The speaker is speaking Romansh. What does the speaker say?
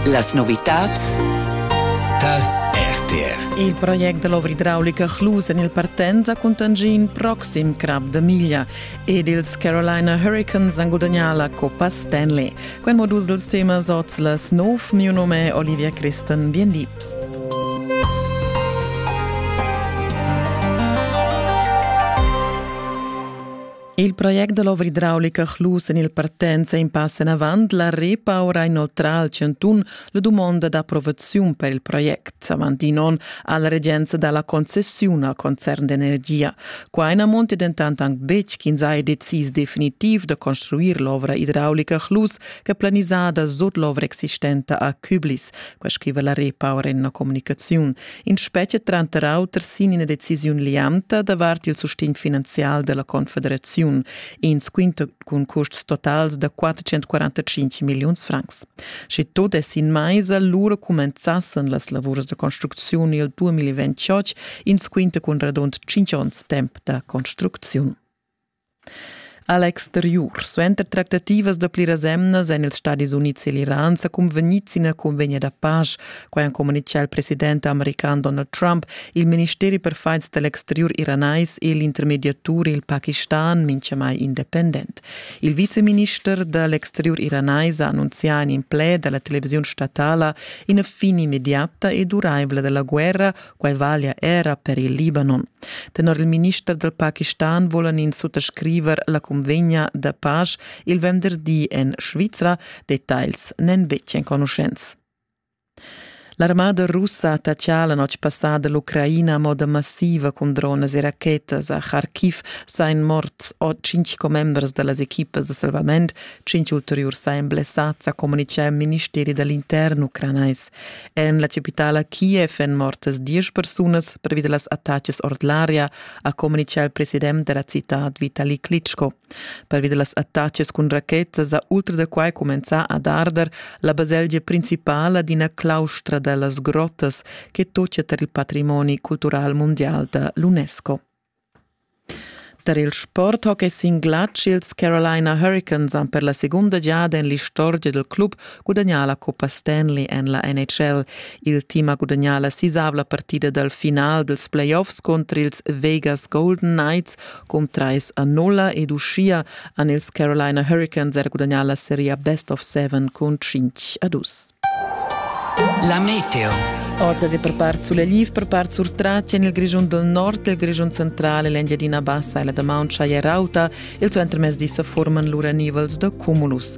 Las novitads tar RTR. Il project dell'ovridraulica Chlus en il Partenza cuntegna in proxim crap da miglia ed ils Carolina Hurricanes han gudagnà la Coppa Stanley. Quel modus dels temas oz la snov, mio nome è Olivia Christen, Viendi. Il project da l'ovra idraulica Chlus en il partenza in pass enavant la Repau ha inoltrà al Chantun la dumonda d'approvaziun per il project. Avant in onn ha la regenza dà la concessiun al concern d'energia. Qua na monti dentant anc betg ch'ins ha decis definitiv da construir l'ovra idraulica Chlus che planisada sut l'ovra existenta a Küblis. Quai scriva la Repau en una comunicaziun. In spetga tranter auter sin ina decisiun lianta davart il sustegn finanzial della Confederaziun, ins quinta cun custs totals da 445 milliuns francs. Sche tot es in meisa, lura comenzassen las lavurs da construcziun il 2028, ins quinta cun radund 5 onns temp da construcziun. A l'exteriur suenter tractativas da pliras emnas èn ils Stadis Unids e l'Iran sa cunvegnids ina cunvegna da pasch. Quai ha communitgà il president american Donald Trump, il ministeri per fights da l'exteriur iranais e l'intermediatur il Pakistan mintgamai independent. Il viceminister da l'exteriur iranais ha annunzià in in pled da la televisiun statala ina fin immediata e duraivla da la guerra Quai valia era per il Libanon. Tenor il minister dal Pakistan vulan ins suttascriver la convegna da pace il venderdi en Svizra. Details n'èn betg enconuschents. L'armada russa ha attaccà la notg passada l'Ucraina a moda massiva cun drones e rachetas. A Kharkiv sain mort cinc commembers da las equipas da salvament. Cinc ulteriurs sain blessads, ha communitgà il ministeri da l'intern ucranais. En la capitala Kiev èn mortas diesch persunas pervi da las attacas ord l'aria, ha communitgà il president da la citad Vitali Klitschko. Pervi da las attacas cun rachetas ha ultra da quai cumenzà ad arder la baselgia principala d'ina claustra da las grottas che tocca tar il patrimoni cultural mondial da l'UNESCO. Tar il sport hockey sin glatsch ils Carolina Hurricanes han per la segunda giada en l'istorgia dal club gudagnà la cuppa Stanley en la NHL. Il team ha gudagnà la sisavla partida dal final dals playoffs cunter ils Vegas Golden Knights cun trais a nulla ed uschia han ils Carolina Hurricanes er gudagnà la seria Best of Seven cun 5 a 2. La meteo. Oz è per part sulla Liv, per part sur Tratsch en il Grischun del Nord, il Grischun central e l'Engiadina Bassa e la damaun Chaya Rauta. Il suentermezdi sa forman lura nivels da cumulus.